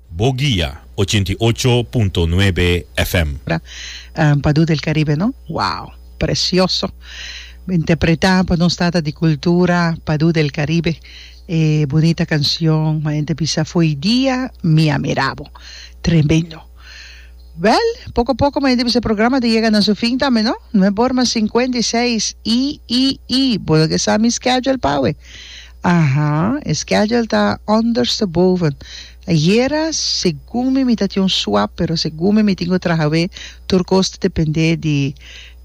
Bo guia ochenta i ocho punto nuebe FM. Padu del Caribe no wow precioso interpreta pa nos tata di cultura Padu del Caribe e bunita cancion ma ente bisa foi dia mi a mira bo tremendo wel poco poco ma ente bisa programa ta yega na su fin tambe no nueborma cincuenta y seis y y y bo lo ke sa mi schedule pa awe. Aha, e schedule ta ondersteboven. Ayera segun mi mi ta tin un swap pero segun mi mi tin cu traha away tur cos ta depende di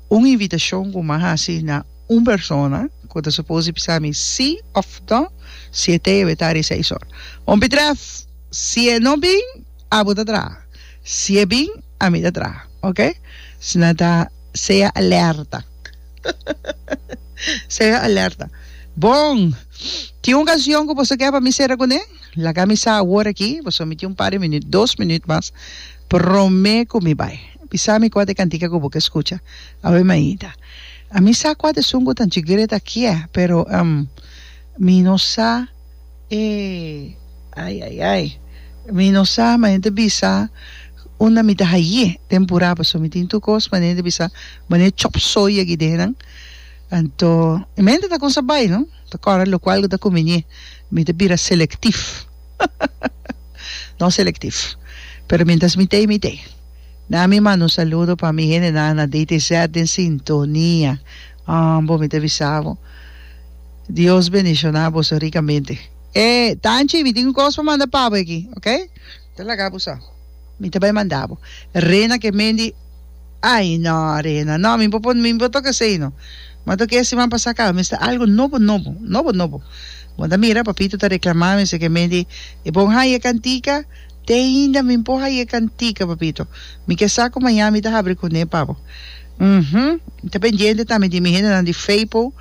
un invitacion cu mi a haci na un persona cu ta suppose di bisa mi si of no si e tey a weta di seis or. Bon Pitref, si e no bin abo ta traha, si e bin ami ta traha, ok? Sna ta sea alerta. Sea alerta. Bon! Tin un canción cu boso ke pa mi cera cune? Laga mi sa awor aki, boso mi tin un par di minuut, dos minuut mas, prome cu mi bay. Bisa mi cua ta e cantica cu bo ke scucha. Awe Maida. A mi sa cua ta esun cu ta djigret akié, pero, ehm, mi no sa. Ey, ay, ay, ay. Mi no sa, ma hende bisa unda mi ta haye tempura paso mi tin tur cos, ma hende bisa mane chop soy yagi den nan. Anto y mi hende ta con sa bay no, ta cora locual cu ta cumbinie. Mi ta bira selectif, no selectif, pero mientras mi tey mi tey. Nami manda un saludo pa mi hende nan na DTZ den sintonia. Bo mi ta bisa bo. Dios bendiciona boso ricamente. E Tanchi mi tin un cos pa manda pabo aki ok. Ta laga bo sa. Mi ta bay manda bo. Rena ke Mendy ay no Rena no mi bo mi bo toca esey no ma toca e siman pasa caba mester algo nobo nobo nobo nobo bo ta mira papito ta reclama mester ke Mendy e bon haña e cantica Te ainda mi por ha'i e cantica, papito. Mi ke sa cu maña mi ta habri cune pa bo. Uhum. Ta pendiente tambe di mi hendenan di Feipo.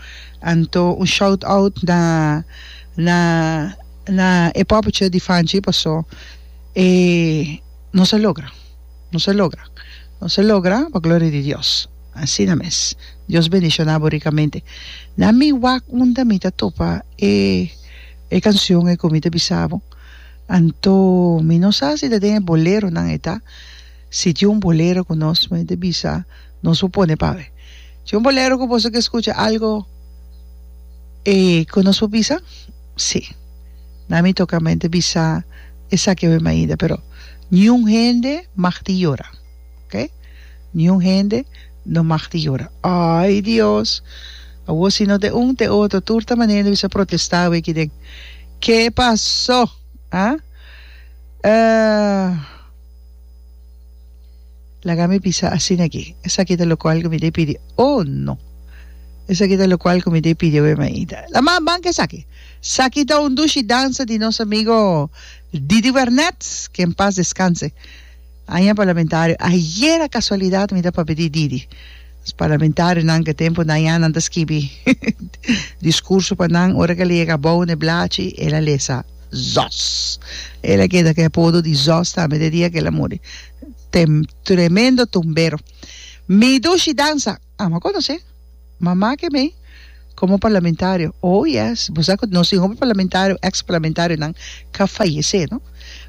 Anto un shout out na na na e poppetje di Fanchi paso e nos a logra. Nos a logra. Nos a logra pa gloria di Dios. Asina mes. Dios bendiciona bo ricamente. Na mi wak unda mi ta topa e e cancion e cu mi ta bisa bo. Anto mi no sa si ta den e boleronan ei ta, si tin un bolero ku nos mester ta bisa nos por pone pa awe. Tin un bolero ku boso ke skucha algu e ku nos por bisa? Si. Na mi toka mente bisa esaki awe mainda pero niun hende mag tin yora oke niun hende no mag tin yora ai Dios awor si no te un te otro tur ta manera di bisa protesta awe aki den Ke pasó? A ah. Laga mi bisa asina aki. Esaki ta lokual ku mi dei pidi. Oh no. Esaki ta lokual ku mi dei pidi awe mainta. La mas ban ke esaki. Esaki ta un dushi dansa di nos amigo Didi Wernet, ke en pas deskanse. Aña parlamentario ayera casualidad mi ta papia di Didi nos parlamentario nan ke tempo nayan nan ta skibi discurso pa nan ora ke el a yega abou ne blachi el a lesa zos el a keda ke apodo di zos tambe de dia ke el a muri tem tremendo tumbero mi dushi dansa Amo conoce mama ke mei como parlamentario oh yes bo sa cu nos tin hopi parlamentario ex parlamentario nan ka fayece no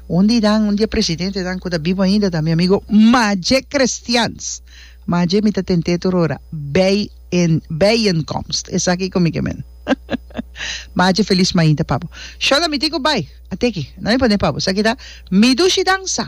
un di nan un di e presidentenan cu ta bibo ainda ta mi amigo Maje Christians Maje mi ta tente tur ora bij een bijenkomst esaki cu mi ke men Maje feliz mainta pa bo Shona mi tin cu bai a teki nan mi pone pa bo sa kita mi dushi dansa.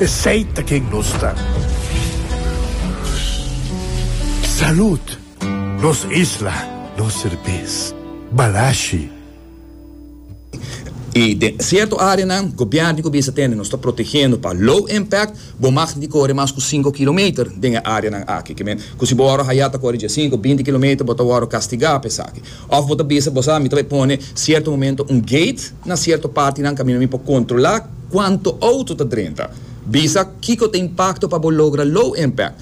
Esey ta ken nos ta. Salud! Nos isla, nos serbes. Balashi. Y den cierto areanan, gobiernio cu bisa tende nos ta protegendo pa low impact, bo mag ni core mas cu cinco kilometer den e areanan aki. Cu si bo wor a haya ta core dje cinco, binti kilometer, bo ta wor castiga pa esaki. Òf bo ta bisa bo sa, mi ta bay pone sierto momento un gate na sierto partinan kaminda mi por kontrolá kuantu outo ta drenta. Bisa kiko ta impakto pa bo logra low impact.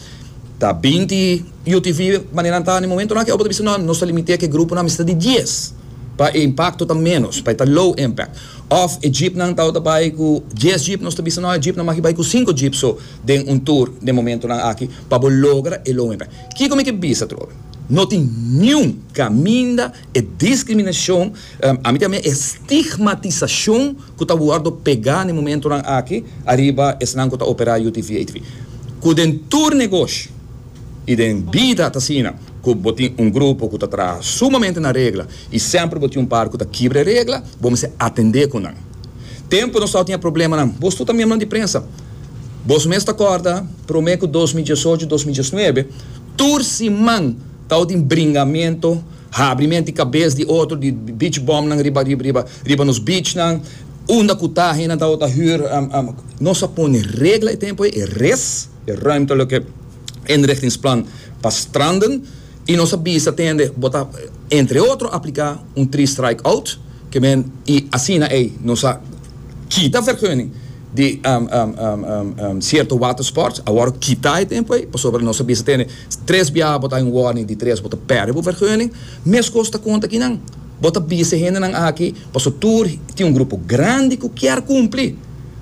Ta binti UTV maneran ta den momentunan aki òf bo ta bisa nò nos ta limit'é ku e gruponan mester di dies pa e impakto ta ménos, pa e ta low impact. Òf e jeepnan ta wòrdu bay ku dies jeep, nos ta bisa nò e jeepnan maki bay ku sinku jeep so den un tur den momentunan aki pa bo logra e low impact. Kiko mi ke bisa atrobe? No tin niun kaminda e diskriminashon, ami ta ami e stigmatisashon ku ta wòrdu pegá na e momentunan aki ariba esnan ku ta operá UTV, ATV. Ku den tur negoshi i den bida ta asina, ku bo tin un grupo ku ta traha sumamente na regla i semper bo tin un par ku ta kibra e regla, bo mester atendé ku nan. Tempu nos tabata tin e problemanan, bos tur ta miembronan di prensa, bos mes ta kòrda promé ku dos mil diesocho, dos mil diesnuebe, Tur siman tabatin bringamiento, habri mienti cabes di otro di beach bumnan riba riba riba nos beachnan, unda cu ta hendenan tabata huur nos a pone regla e tempo ey, e res, e ruimtelijke inrichtingsplan pa stranden y nos a bisa tende bo ta entre otro aplica un three strike out, que men y asina ey nos a. Kita vergunning di sierto watersports, awor kita e tempo ei, pasobra nos a bisa tene tres biaha bo ta haña un warning di tres bo ta perde bo vergunning. Meskos ta konta kinan, bo ta bisa e hendenan aki, paso tur tin un grupo grandi ku kier kumpli,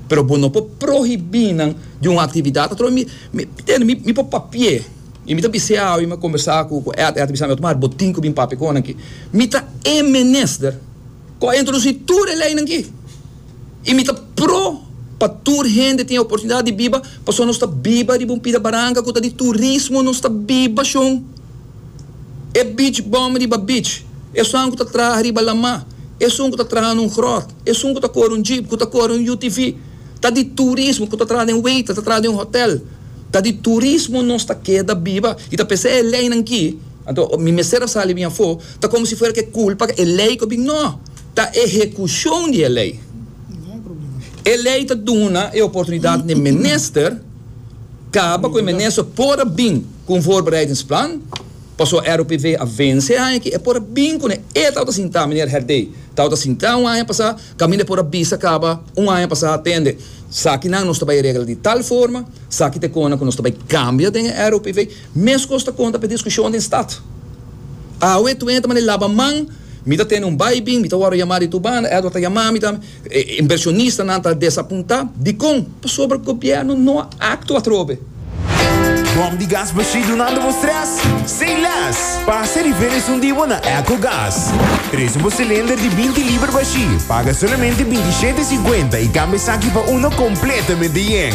pero bo no por prohibí nan di un aktividat. Atrò mi mi tene mi mi por papié i mi ta bis'é awe, mi a kombersá ku ku Ed, Ed a bisami, Otmar bo tin ku bin papia konan aki, mi ta e menester. Cu a introduci tur e leynan aki. Y mi ta pro pa tur hende tin e oportunidad di biba, pasobra nos ta biba riba un pida baranca cu ta di turismo, nos ta biba shon. E beach bum riba beach, esun cu ta traha riba lama, esun cu ta traha na un grot, esun cu ta core un jeep, cu ta core un utv, ta di turismo, cu ta traha den waiter, ta traha den un hotel, ta di turismo nos ta keda biba. Y ta p'esey e leynan aki. Anto, mi mester a sali bin afó, ta komo si fuera ku e kulpa e lei ku bin. No! Ta e ehekushon di e lei. E lei ta duna e oportunidat n'e minister kaba ku e minister por a bin ku un voorbereidingsplan, paso ROPV a vense e aña aki, e por a bin ku ne, e tabata sintá, Meneer Herdé tabata sintá un aña pasá, kaminda e por a bisa kaba un aña pasá, atende, sakinan nos ta bai regla di tal forma, saki ta e kona ku nos ta bai kambia den e ROPV. Mescos ta conta p'e discusion den stad. Awe tu enta manera laba man, mi ta tene un bai bin, mi ta wòrdu yamá di tur banda, Edward ta yamá mi tambe, e inversionistanan ta desapuntá. Dikon? Pasobra gobièrnu no a aktua atrobe. Bòm di gas bashí dunando bo strès? Say less! Pasa rifer esun di bo na Ecogas. Trese bo silinder di binti liber bashí, paga solamente binti shete e sinkuenta i kambia esaki pa uno kompletamente yen.